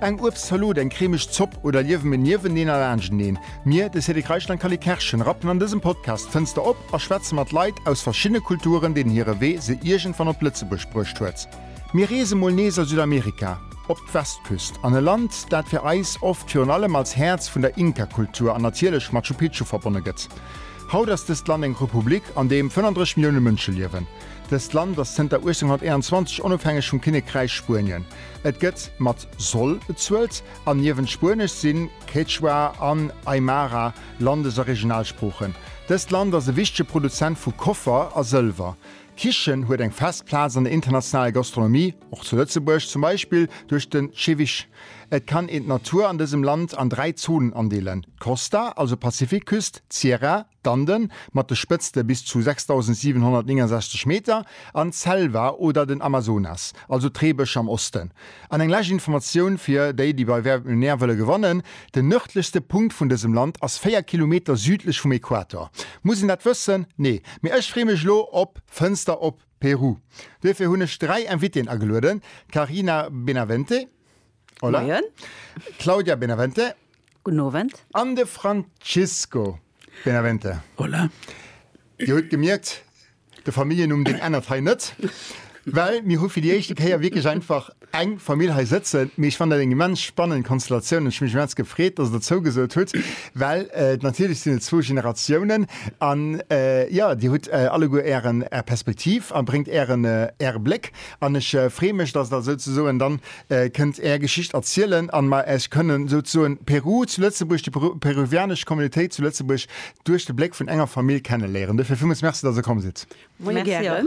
Eng Uebstzalot, eng cremeg Zopp oder liewe mir nieweneen a laanschteneen? Mir, de Cédric Reichel an d'Cally Kerschen, rappen an dësem Podcast d'Fënster op a schwätze mat Leit aus verschiddene Kulturen, deenen hire Wee se iergendwann op Lëtzebuerg bruecht huet. Mir reese mol nees a Südamerika, op d'Westküst, an e Land, dat fir eis oft virun allem als Häerz vun der Inka-Kultur an natierlech Machu Picchu verbonne gëtt. Haut ass dëst Land eng Republik, an deem 35 Millioune Mënsche liewen. Dëst Land ass zënter 1821 onofhängeg vum Kinnekräich Spuenien. Et gëtt mat soll bezuelt an niewent Spuenesch sinn Quechua an Aymara Landes a Regionalsproochen. Dëst Land ass e wichtege Produzent vu Koffer a Sëlwer. D'Kichen huet eng fest Plaz an der internationaler Gastronomie, och zu Lëtzebuerg, zum Beispill duerch den Ceviche. Et kann een d'Natur an dësem Land an dräi Zonen andeelen, d'Costa, also Pazifikküst, d'Sierra, D'Anden, mat de Spëtzte bis zu 6.769 Meter, an d'Selva oder den Amazonas, also d'Reebësch am Osten. An eng lescht Informatioun fir déi, déi bei Wer wird Millionär wëlle gewannen, Den nërdlechste Punkt vun dësem Land ass 4 Kilometer südlech vum Equator. Muss een dat wëssen? Nee. Mee ech free mech elo op Fënster op Peru. Duerfir hunn ech dräi Invitéen agelueden, d'Karina Benavente. Hola. Moien. Claudia Benavente. Guten Owend. An de Francisco Benavente. Hola. Dir hutt gemierkt, de Familljennumm deen ännert hei net. Well mir hu fir déi éischte Kéier wierklech einfach eng Famill hei sëtzen. Mee ech fannen dat eng immens spannend Konstellatioun an ech hu mech immens gefreet, datt Der zougesot hutt. Well natierlech sinn et zwou Generatiounen an jo, Dir hutt alleguer Ären, Är Perspektiv a bréngt Ären, Äre Bléck an ech freeë mech, datt et also souzesoen dann, kënnt Är Geschicht erzielen an mer Äech kënnen souzesoen Peru zu Lëtzebuerg, déi peruvianesch Communautéit zu Lëtzebuerg duerch de Bléck vun enger Famill kennen léieren. Duerfir villmools Merci, dass Der komm sidd. Moie gären.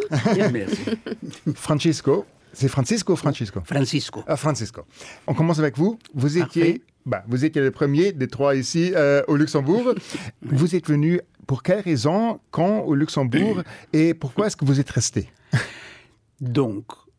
Francisco, c'est Francisco ou Francesco? Francisco. Francisco. On commence avec vous, vous étiez, ben, vous étiez le premier des trois ici au Luxembourg. Vous êtes venu pour quelle raison, quand au Luxembourg et pourquoi est-ce que vous êtes resté? Donc.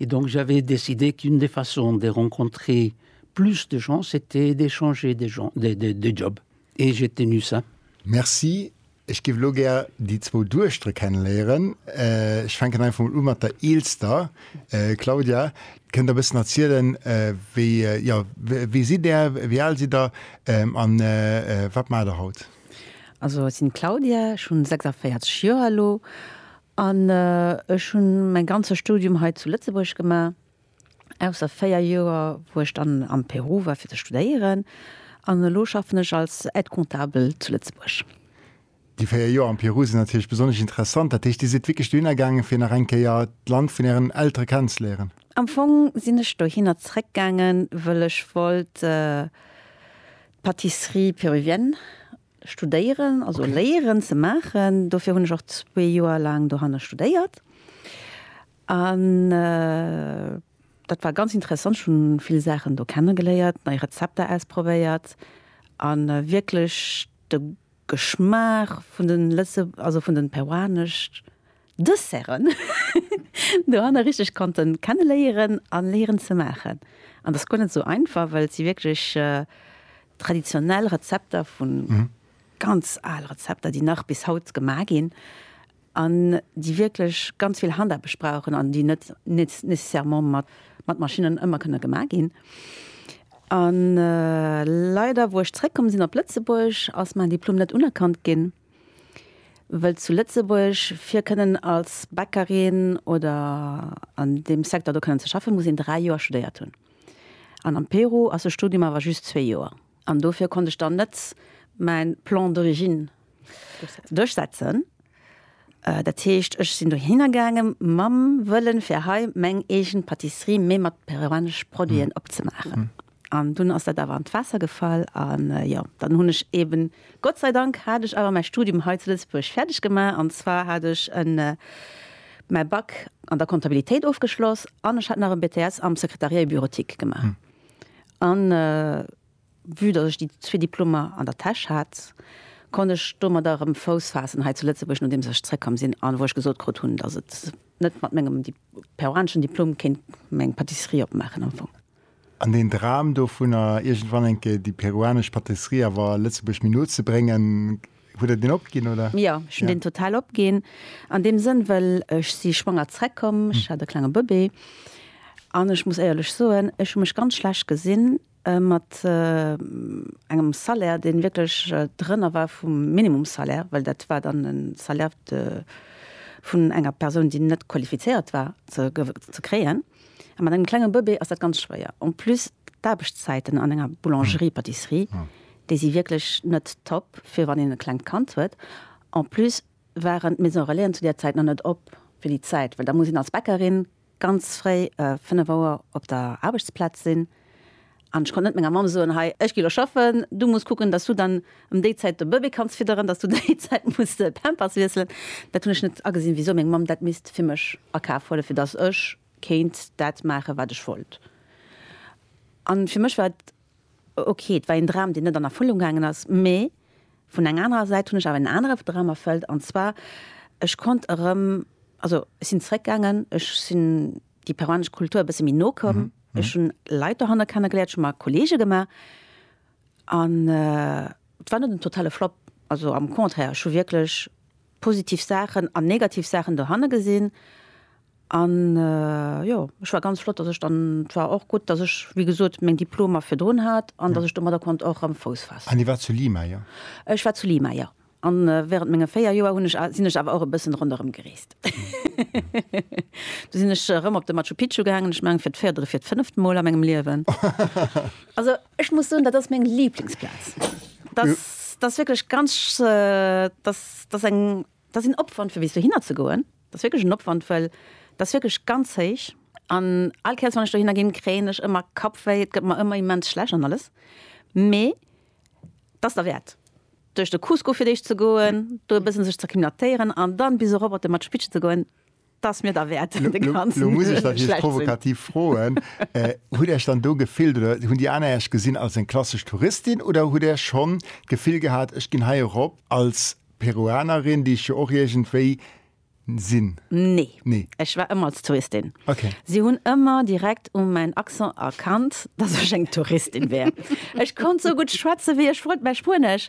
et donc j'avais décidé qu'une des façons de rencontrer plus de gens c'était de changer de gens de de de job et j'ai tenu ça. Merci. Ech giff elo gär déi zwou Dueschtere kennenléieren. Ech fänken einfach mol u mat der eelster. Claudia, kënnt der e bëssen erzielen wéi, jo, wie sidd der, wéi al sidd der an wat maacht der haut? Also ech sinn d'Claudia, ech hunn 46 Joer elo An ech hunn mäin ganze Studium hei zu Lëtzebuerg gemaach, ausser 4 Joer, wou ech dann am Peru war fir ze studéieren. An elo schaffen ech als Aide-comptable zu Lëtzebuerg. Déi 4 Joer am Peru sinn natierlech besonnesch interessant. Dat heescht, Dir sidd wierklech dohinner gaangen, fir nach eng Kéier d'Land vun Ären Eltere kennenzeléieren? Am Fong sinn ech dohinner zréck gaangen, wëll ech wollt d'Pâtisserie péruvienne studéieren, also léieren ze maachen. Dofir hunn ech och zwee Joer laang dohanne studéiert. An dat war ganz interessant, ech hunn vill Saachen do kenne geléiert, nei Rezepter ausprobéiert a wierklech de Geschmaach vun de lëtze, also vun de peruanesch. Desserten dohanner richteg konnten kenneléieren an léieren ze maachen. An dass guer net esou einfach well et si wierklech traditionell Rezepter vun ganz al Rezepter déi nach bis haut gemaach ginn an déi wierklech ganz vill Handaarbecht brauchen an déi net nécessairement mat Maschinnen ëmmer kënne gemaach ginn. An leider wou ech zréck komm sinn op Lëtzebuerg ass main Diplom net unerkannt ginn. Wëll zu Lëtzebuerg fir kënnen als Bäckerin oder an deem Secteur do kënnen ze schaffen, muss een 3 Joer studéiert hunn. An am Peru ass de Studium awer just zwee Joer. An dofir konnt ech dann net mäi Plan d'origine duerchsetzen. Dat heescht, ech sinn dohinner gaange mam Wëllen, fir hei meng eegen Patisserie, mee mat peruanesch Produiten, opzemaachen. An dunn ass dat awer an d'Waasser gefall. A jo, dann hunn ech eeben, Gott sei Dank hat ech awer mäi Studium hei zu Lëtzebuerg fäerdeg gemaach. An zwar hat ech mäi Bac an der Comptabilitéit ofgeschloss an ech hat nach e BTS am Secrétariat et Bureautique gemaach. An vue datt ech déi zwee Diplomer an der Täsch hat, konnt ech domadder erëm Fouss faassen hei zu Lëtzebuerg, nodeems ech zeréckkomm sinn an wou ech gesot krut hunn, datt et net mat mengem peruaneschen Diplom kéint meng Pâtisserie opmaachen am Fong. An deen Dram dovunner, iergendwann eng Kéier déi peruanesch Patisserie awer Lëtzebuerg méi no ze bréngen, hutt Der deen opginn, oder? Jo, ech hunn deen total opginn. An deem Sënn, well ech si schwanger zrëckkomm, ech hat e klenge Bëbee, an ech muss éierlech soen, ech hu mech ganz schlecht gesinn mat engem Salaire, dee wierklech drënner war vum Minimumssalaire, well dat war dann e Salaire vun enger Persoun, déi net qualifizéiert war, ze kréien. A mat engem klenge Bëbee ass dat ganz schwéier. En plus d'Aarbechtszäiten an enger Boulangerie-Pâtisserie, déi si wierklech net top, fir wann een e klengt Kand huet. En plus waren d'Maisons Relaisen zu där Zäit nach net op fir déi Zäit, well da muss een als Bäckerin ganz fréi, 5 Auer, op der Aarbechtsplaz sinn. An ech konnt net menger Mamm soen, Hei, ech gi lo schaffen, du muss kucken, dass du dann ëm déi Zäit de Bëbee kanns fidderen, dass du déi Zäit muss de Pampers wiesselen. Dat hunn ech net agesinn, wisou meng Mamm dat misst fir mech a Kaf huelen, fir dass ech kéint dat maachen, wat ech wollt. An fir mech war et ok. Et war een Dram, deen net an Erfëllung gaangen ass. Mee vun enger anerer Säit hunn ech awer en anere Dram erfëllt, an zwar, ech konnt erëm, also ech sinn zréckgaangen, ech sinn. déi peruanesch Kultur e bësse méi no komm. Ech hunn Leit dohanner kennegeléiert, ech hu mer Kolleege gemaach an et war net en totale Flopp. Also am Contraire, ech hu wierklech positiv Saachen an negativ Saachen dohanne gesinn an jo, ech war ganz flott, datt ech dann, et war och gutt, datt ech wéi gesot meng Diplomer virdrun hat an datt ech domadder konnt och erëm Fouss faassen. An Dir waart zu Lima, jo? Ech war zu Lima, jo. A während menge 4 Joer hunn ech a sinn ech awer och e bëssen ronderëm gereest. Do sinn ech erëm op de Machu Picchu gaangen, ech mengen fir d'véiert oder fir d'fënneft Mol a mengem Liewen. Also ech muss soen, dat ass meng Liblingsplaz. Dass, dass wierklech ganz, dass, dass eng, dass een Opwand fir bis dohinner ze goen, dass wierklech en Opwand, well dass wierklech ganz héich. An all Kéiers wann ech dohinner ginn, kréien ech ëmmer Kappwéi, et gëtt mer ëmmer immens schlecht an alles, mee. 't ass derwäert, duerch de Cusco fir d'éischt ze goen, do e bëssen sech z'acclimatéieren an dann bis erop op de Machu Picchu ze goen, 't ass mir derwäert de ganzen Lo muss ech nach Iech provokativ froen, Hutt Där Iech dann do gefillt oder hunn déi aner Iech gesinn als eng klassesch Touristin oder hutt Där schonn d'Gefill gehat, ech ginn hei erop als Peruanerin, déi ech jo och iergendwéi sinn? Nee. Nee. Ech war ëmmer als Touristin. Okay. Si hunn ëmmer direkt u mäin Accent erkannt, dass ech eng Touristin wär. Ech konnt sou gutt schwätze wéi ech wollt, mä Spuenesch,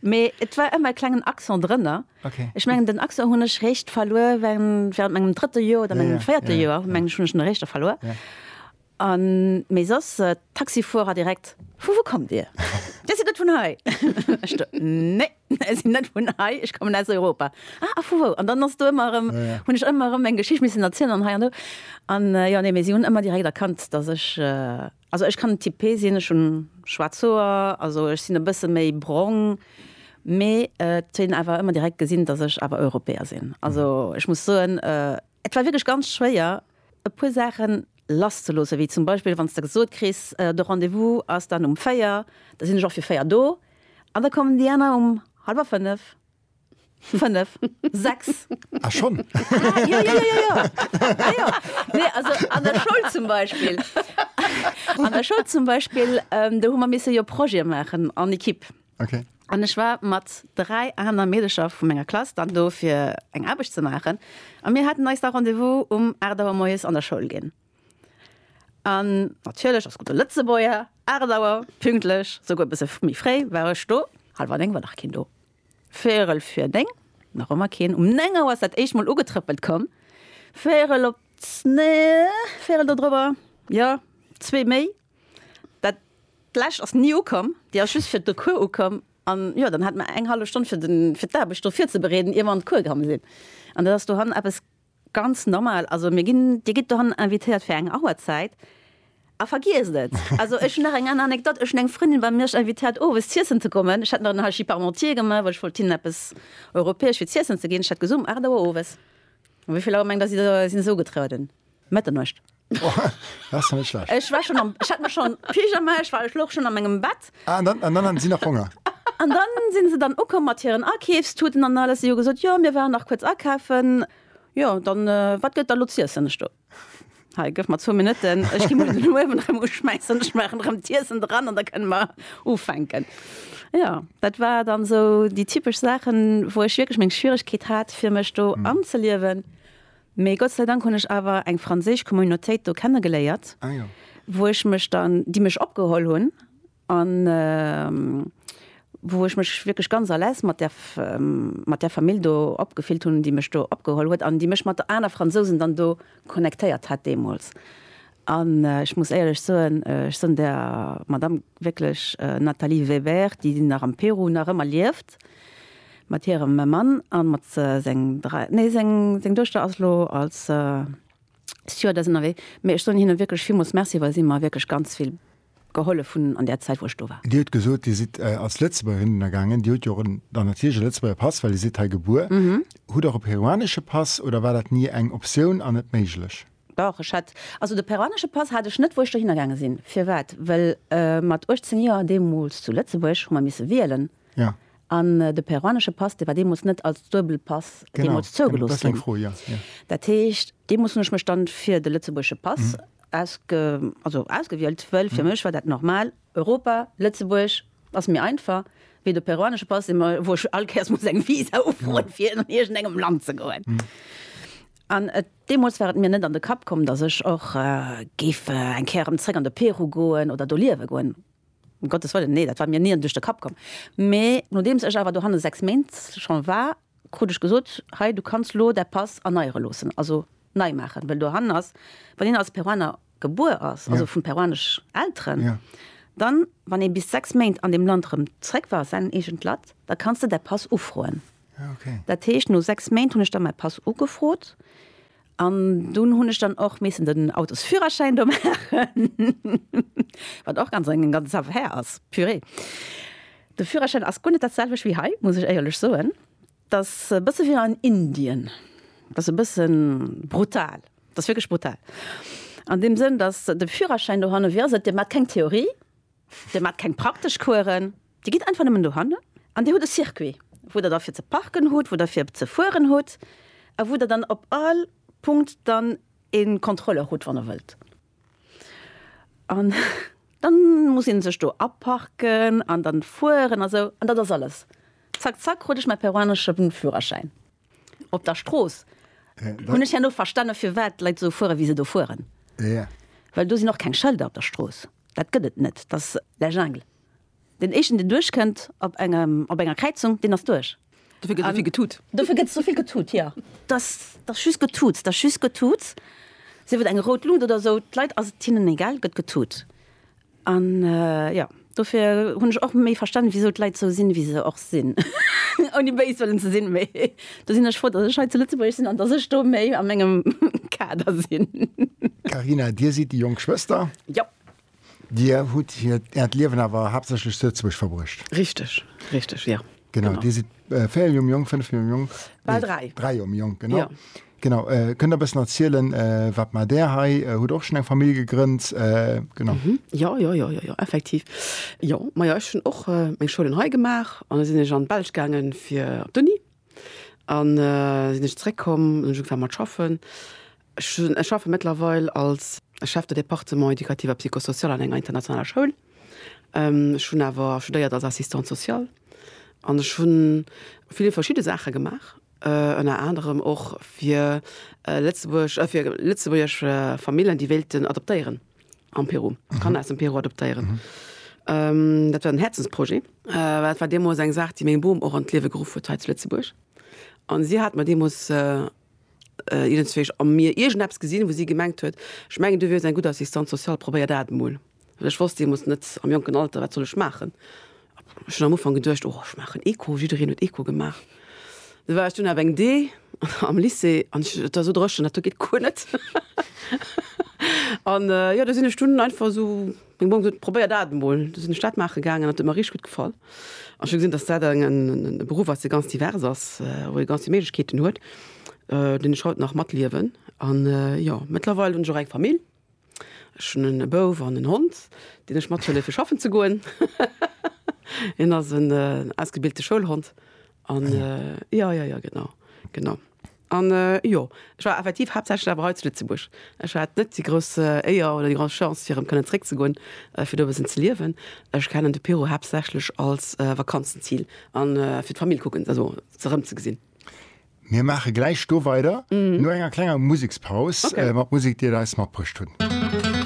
mee et war ëmmer e klengen Accent drënner. Okay. Ech mengen, den Accent hunn ech réischt verluer während mengem drëtte Joer oder mengem véierte Joer, meng ech, hunn ech en réischt da verluer. An mee soss Taxifuerer direkt, Vu wou kommt Dir? Dir sidd net vun hei? Ech do, Nee, ech sinn net vun hei, ech kommen aus Europa. Ah, a vu wou? An dann ass do ëmmer erëm, hunn ech ëmmer erëm eng Geschicht missen erzielen an hei an do. An jo, nee, mee si hunn ëmmer direkt erkannt, dass ech, also ech kann typé sinn, ech hunn schwaarz Hoer, also ech sinn e bësse méi brong, mee et hunn awer ëmmer direkt gesinn, dass ech awer Europäer sinn. Also ech muss soen, et war wierklech ganz schwéier, e puer Saachen lass ze loossen, wéi zum Beispill wann s de gesot kriss, de Rendez-vous ass dann um véier, da sinn ech och fir véier do an da kommen déi aner um hallwer fënnef, fënnef, sechs. Ah schonn? Ah jo, jo, jo, jo, ah jo. Nee, also an der Schoul zum Beispill, an der Schoul zum Beispill, do hu mer misse jo Projete maachen en Equipe. Okay. An ech war mat dräi aner Meedercher vu menger Klass dann do fir eng Aarbecht ze maachen. A mir haten eis da Rendez-vous um 8 Auer moies an der Schoul ginn. An natierlech, als gudde Lëtzebuerger, 8 Auer pünktlech, souguer e bësse méi fréi war ech do. Hallwer néng war nach keen do, véierel vir néng nach ëmmer keen. Um néng Auer ass dat éischt mol ugetrëppelt komm, véierel op, nee, véierel dodrëwwer, jo, zwee méi. Dat lescht ass ni ukomm, déi ass just fir de Cours ukomm. An jo, dann hat mer eng hallef Stonn fir den, fir d'Aarbecht do virzebereeden, ier mer an de Cours gaange sinn. An dat ass dohannen eppes ganz normal. Also mir ginn, Dir gitt dohannen invitéiert fir eng Auerzäit a vergiesst et. Also ech hunn nach eng aner Anekdott, Ech hunn eng Frëndin bei Miersch invitéiert owes z'iessen ze kommen. Ech hat nach en Haishi Parmentier gemaach, well ech wollt hinnen eppes Europäesch fir z'iessen ze ginn. Ech hat gesot, um 8 Auer owes. Wéi vill Auer mengt Der, si sinn esou ugetrueden? Mëtternuecht. Ech war schon am ech hat mech schon Pyjama, ech war ech louch schon a mengem Bett. Ah, an dann, an dann haten si nach Honger? An dann sinn se dann ukomm mat hiren Akeefstuten an alles. Si hu gesot, jo mir waren nach kuerz akafen. Jo, dann wat gëtt da lo z'iessen? Ech do, hei gëff mer zwou Minutten, ech ginn mol den Uewen erëm uschmäissen, ech maachen erëm d'Iessen dran an da kënne mer ufänken. Jo, dat war dann esou déi typesch Saachen, wou ech wierklech meng Schwieregkeet hat fir mech do anzeliewen. Mee Gott sei Dank hunn ech awer eng franséisch Communautéit do kennegeléiert, wou ech mech dann, déi mech opgeholl hunn an wou ech mech wierklech ganz à l'aise mat där, mat där Famill do opgefillt hunn, déi mech do opgeholl huet an déi mech mat aner Fransousen dann do connectéiert hat deemools. An ech muss éierlech soen, ech soen der Madamm wierklech, Nathalie Weber, déi nach am Peru nach ëmmer lieft, Mat hirem Mann a mat seng dräi, nee, seng Duechter ass elo als Stewardess ënnerwee. Mee ech soen hinne wierklech villmools Merci, well si mer wierklech ganz vill gehollef hunn an där Zäit, wou ech do war. Dir hutt gesot, Dir sidd als Lëtzebuergerin ënnergaangen. Dir hutt jo och dann natierlech e Lëtzebuerger Pass, well Dir sidd hei gebuer. Hutt Der och e peruanesche Pass oder war dat ni eng Optioun an net méiglech? Dach, ech hat, also de peruanesche Pass hat ech net, wou ech dohinner gaange sinn. Firwat? Well mat 18 Joer, deemools zu Lëtzebuerg, hu mer misse wielen. Ja. An de peruanesche Pass, dee war deemools net als Duebelpass deemools zougelooss ginn. Genau, dat ass eng Fro, ja, ja. Dat heescht, deemools hunn ech mech dann fir de lëtzebuergesche Pass ausge, also ausgewielt, wëll fir mech war dat normal, Europa, Lëtzebuerg ass méi einfach wéi de peruanesche Pass, dee mer, wou ech all Kéiers muss eng Visa ufroen, fir an iergendengem Land ze goen. An et, deemools war et mir net an de Kapp komm, dass ech och géif eng Kéier erëm zréck an de Peru goen oder do liewe goen. Um Gottes Wëllen, nee, dat war mir ni duerch de Kapp komm. Mee nodeems ech awer dohanne sechs Méint scho war, krut ech gesot, Hei, du kanns lo däi Pass erneiere loossen, also nei maachen. Well dohannen ass, wann een als Peruaner gebuer ass, also vu peruanesch Elteren, dann, wann ee bis sechs Méint an deem Land erëm zréck war, säin eegent Latt, da kanns de däi Pass ufroen. Dat heescht, no sechs Méint hunn ech da mäi Pass ugefrot. An dunn hunn ech dann och missen den Autosführerschäin do maachen, wat och ganz eng ganz Affaire ass, purée. De Führerschäin ass guer net dat selwecht wéi hei, muss ech éierlech soen. Dat ass e bësse wéi an Indien, dat ass e bësse brutal, dat ass wierklech brutal an deem Sënn, datt de Führerschäin dohanne, wéi ass et, Dir maacht keng Theorie, Dir maacht keng praktesch Coursen, Dir gitt einfach nëmmen dohannen an Dir hutt e Circuit, wou Der da fir ze parken hutt, wou Der fir ze fueren hutt a wou Der dann op all Punkt dann e Contrôleur hutt, wann Der wëllt. An da muss ee sech do aparken an dann fueren a sou. An dat ass alles. Zack, zack, krut ech mäi peruanesche Führerschäin. Op der Strooss hunn ech herno verstanen, firwat d'Leit esou fueren, wéi se do fueren. Well do sinn och keng Schëlder op der Strooss. Dat gëtt et net. Dat ass la jungle. Deen éischten, deen duerchkënnt op engem, op enger Kräizung, deen ass duerch. Dofir gëtt esou vill getut. Dofir gëtt esou vill getut, jo. Dat ass just Getutz. Dat ass just Getutz. Sief et eng rout Luut oder esou, d'Leit ass et hinnen egal, gëtt getut. An jo, dofir hunn ech och méi verstanen, wisou d'Leit sou sinn, wéi se och sinn, ouni béis wëllen ze sinn. Mee do sinn ech frou, datt ech hei zu Lëtzebuerg sinn an datt ech do méi a mengem Kader sinn. Carina, Dir sidd déi jonk Schwëster. Jo. Dir hutt Äert Liewen awer haaptsächlech zu Lëtzebuerg verbruecht. Richteg, richteg, jo. Genau, Dir sidd véier Joer méi jonk, fënnef Joer méi jonk? Bal dräi. Dräi Joer méi jonk, genau. Jo. Genau, kënnt der bëssen erzielen, wat maacht Där hei? Hutt der och schonn eng Famill gegrënnt? Genau. Jo, jo, jo, jo, jo, effektiv. Jo, majo, ech hunn och meng Schoulen hei gemaach an da sinn ech an d'Belsch gaange fir op d'Uni an da sinn ech zréckkomm an hunn ugefaange mat schaffen. Ech hunn, ech schaffe mëttlerweil als Chef de département éducatif a psychosocial an enger internationaler Schoul. Ech hunn awer studéiert als Assistante sociale an ech hunn vill verschidde Saache gemaach Ënner anerem och fir lëtzebuergesch Famillen, déi wéilten adoptéieren am Peru, Kanner aus dem Peru adoptéieren. Dat war en Häerzensprojet, well dat war deemools eng Saach, déi meng Bom och an d'Liewe geruff huet hei zu Lëtzebuerg. A si hat mer deemools, ieren zwee, a mir iergendeppes gesinn, wou si gemengt huet, ech mengen, du wiers eng gutt Assistante sociale, probéier dat emol. Well ech wosst deemools net am jonken Alter, wat soll ech maachen. Ech hunn am Ufank geduecht, oh ech maachen Eco, jiddereen huet Eco gemaach. Da war ech dunn awer eng D am Lycée an ech, et war esou dréchen, dat do geet guer net. An jo, do sinn ech dunn einfach esou, meng Mamm huet gesot, probéier dat emol. Du sinn ech dat maache gaangen an et huet mer richteg gutt gefall. Ech hu gesinn, datt dat en e Beruff ass, dee ganz divers ass, wou ee ganz vill Méiglechkeeten huet, deen ech haut nach matliewen. An jo, mëttlerweil hunn ech och eng Famill. Ech hunn en e Bouf an en Hond, deen ech mathëlle fir schaffen ze goen. Hien ass en ausgebilte Schoulhond an jo, jo, jo, genau, genau. An jo, ech war effektiv haaptsächlech awer hei zu Lëtzebuerg. Ech hat net déi grouss Éier oder déi grouss Chance fir erëm kënnen zréck ze goen, fir do e bëssen ze liewen. Ech kennen de Peru haaptsächlech als Vakanzenzil an fir d'Famill kucken, also se erëm ze gesinn. Mir maache gläich do weider, no enger klenger Musekspaus, mat Musek, déi der eis matbruecht hunn.